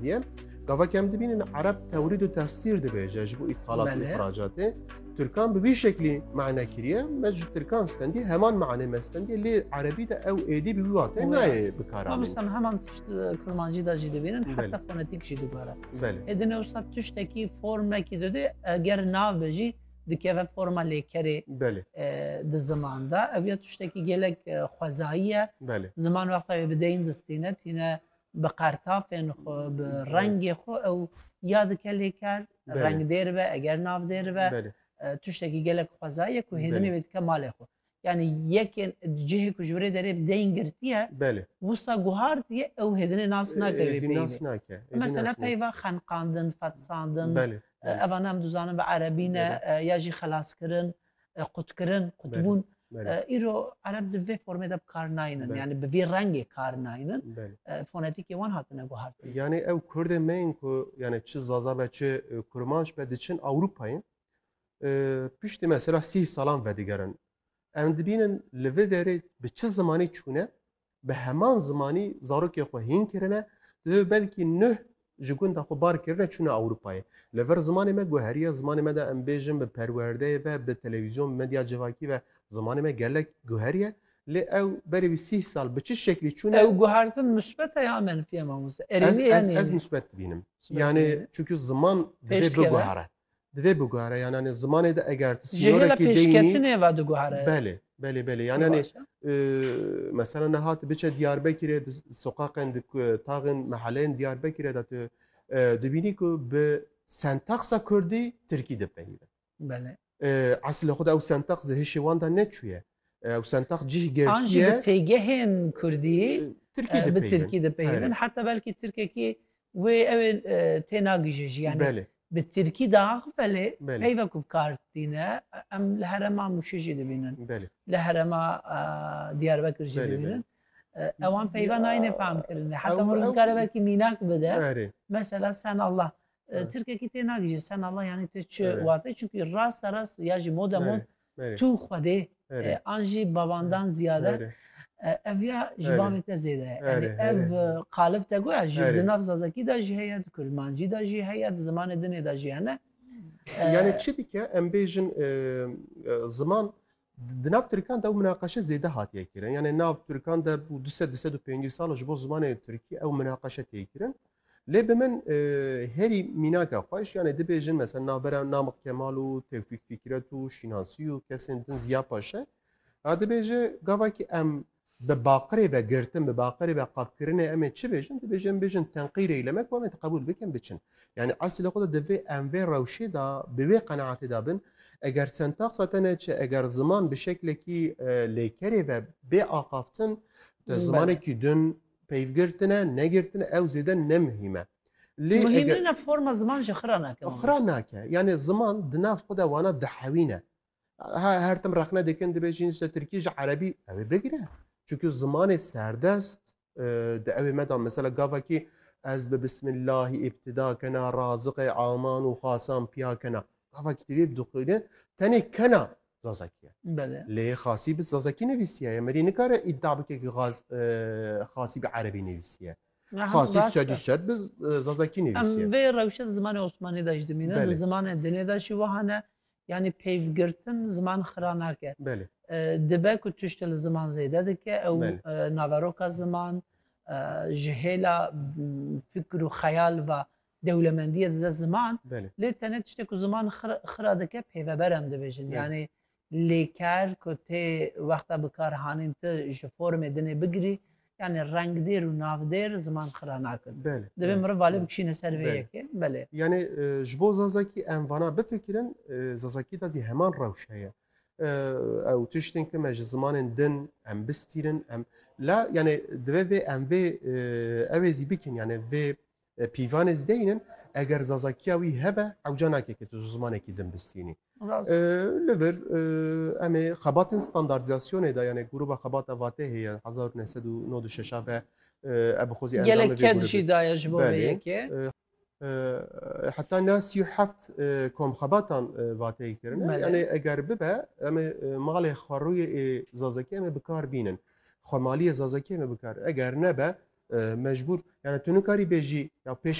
Diye gavak em dibînin Ereb tewrîd û tesîr dibêje ji bo îtxalat û îxracatê. Tirkan bi vî şeklî mane kiriye me ji Tirkan stendî heman mane me stendî lê Erebî de ew êdî bi wîwatê nayê bikara. Misal heman tişt Kurmancî de jî dibînin heta fonetîk jî dibare. Êdin ewsa tiştekî formekî dide eger nave jî dikeve forma lêkerê di ziman de ev ya tiştekî gelek xwezayî ye ziman wexta wê bideyîn distîne tîne bi qertafên xwe, bi rengê xwe ew ya dike lêker, reng dêr be, eger nav dêr be, tiştekî gelek xwezayê ku hêdinê wê dike malê xwe. Yani yekên cihê ku ji birê derê deyin girtiye wisa guhardiye ew hêdinê nas nake wê peyvê. Mesela peyva xenqandin, fetsandin, evan em dizanin bi erebî ne ya jî xelaskirin. qutkirin, qutbûn. Îro ereb di vê formê de bikar naynin. Yani bi vî rengê kar naynin. Fonetîkê wan hatine guhartin. Yani ew Kurdên me yên ku yani çi Zaza be çi Kurmanc be diçin Ewropayê piştî mesela sîh salan vedigerin. Em dibînin li vê derê bi çi zimanî çûne bi heman zimanî zarokê xwe hîn kirine, divê belkî nuh ji gunda xwe bar kirine çûne Ewropayê. Li vir zimanê me guheriye, zimanê me de em bêjin bi perwerdeyê ve, bi televîzyon, bi medya civakî ve zimanê me gelek guheriye. Lê ew berê wî sîh sal bi çi şeklî çûne? Ew guhertin misbet e ya menfî e mamoste? Erênî ye ya nênî? Ez misbet dibînim. Yanê çunku ziman divê biguhere. Di vê bugare yananê zimanê de eger tu Ji hêla sînorekî deynî pêşketinê ve diguhere. Belê, belê, belê. Pir Yananê baş e. mesela niha tu biçe Diyarbekirê di soqaqên di ku- taxên meheleyên Diyarbekirê de tu dibînî ku bi sentaxa kurdî tirkî dipeyive. Belê. Eslê xwe de ew sentax di hişê wan de neçûye. Ew sentex cih girtiye. An jî bi têgehên kurdî bi tirkî dipeyivin. Heta belkî tirkekî wê ew ê tênagije jî. Yanî bi tirkî diax belê peyve ku bi kar tîne em li herema Mûşê jî dibînin. Li herema Diyarbekir jî dibînin. Ewan peyva nayêne fehm kirinê. Heta min dikare belkî mînak bide. Mesela sen Allah. Tirkekî tênagije sen Allah yanî tu çi wate çunkî rasta rast ya jî mode mod Tu Xwedê an jî babandan ziyade ev ya ji bavê te zêde ye. Yanî ev qalib te goya ji di nav zazakî de jî heye, di kurmancî de jî heye, di zimanê dinê de jî hene. Yanî çi dike em bêjin ziman di nav Tirkan de ew minaqeşe zêde hatiye kirin. Yanî nav Tirkan de bû du sed du sed û pêncî sal ji bo zimanê Tirkî ew minaqeşe tê kirin. Lê bi min herî mînaka xwe ji yanê dibêjin mesela navbera Namik Kemal û Tevfîk Fîkret û Şînasî û kesên din Ziya Paşe ya dibêje gavakî em bi baqirê ve girtin bi baqirê ve qapkirinê em ê çi bêjin dibêje em bêjin tenqîrê îlemek wan ê qebûl bikin biçin yanî eslî li xwe de divê em vê rewşê de bi wê qenaatê de bin eger sentaqsa te neçe eger ziman bi şeklekî lêkerê ve bê axaftin te zimanekî din Peyv girtine, negirtine ew zêde ne muhîm e. Lê eger... Muhîm nîne forma ziman jî xira nake. Xira nake. Yanê ziman di nav xwe de wana dihewîne. Her tim rexne dikin dibêjin işte Tirkî ji Erebî ew ê bigire. Çunku zimanê serdest di ewê me da mesela gavekî ez bi bismillahî îbtida kena, raziqê aman û xasan piya kena. Gavekî divê bidixwîne tenê kena Zazakî ye. Belê. Lê Xasî bi Zazakî nivîsiye. Emerî nikare îdia bike ku Xaz Xasî bi Erebî nivîsiye. Xasî sed û sed bi Zazakî nivîsiye. Em vê rewşe di zimanê Osmanî de jî dimîne, di zimanê dinê de jî wiha ne. Yanî peyvgirtin ziman xira nake. Belê. Dibe ku tiştê li ziman zêde dike ew naveroka ziman ji hêla fikir û xeyal ve Dewlemendiye dide ziman, lê tene tiştê ku ziman xira dike pêveber em dibêjin. Yanî lêker ku tê wexta bikarhanîn ti ji formê dinê bigirî, yanî rengdêr û navdêr ziman xira nakin. Divê miriv valê bikişîne ser vê yekê. Belê. Yanî ji bo Zazakî em vana bifikirin, Zazakî de zî heman rewş heye. Ew tiştên ku me ji zimanên din em bistîrin, em la yanî divê vê em vê ew ê zî bikin yanî vê Pîvan ez deyin in eger zazakiya wî hebe ewca nake ke tu zimanekî din bistînî. Li vir em ê xebatên standartizasyonê de yanê grûba xebata vatê heye hezar û neh sed û nod û şeş a ve ev bi xwe zî endamê vê grûbê jî daye ji bo vê yekê. Heta na sî û heft komxebatan vateyê kirine yanê eger bibe em ê malê xwerûyê ê zazakî em ê bi kar bînin. Xwemaliyê Zazakiyê me bikar e, eger nebe mecbûr yani tu nikarî bêjî ya pêşve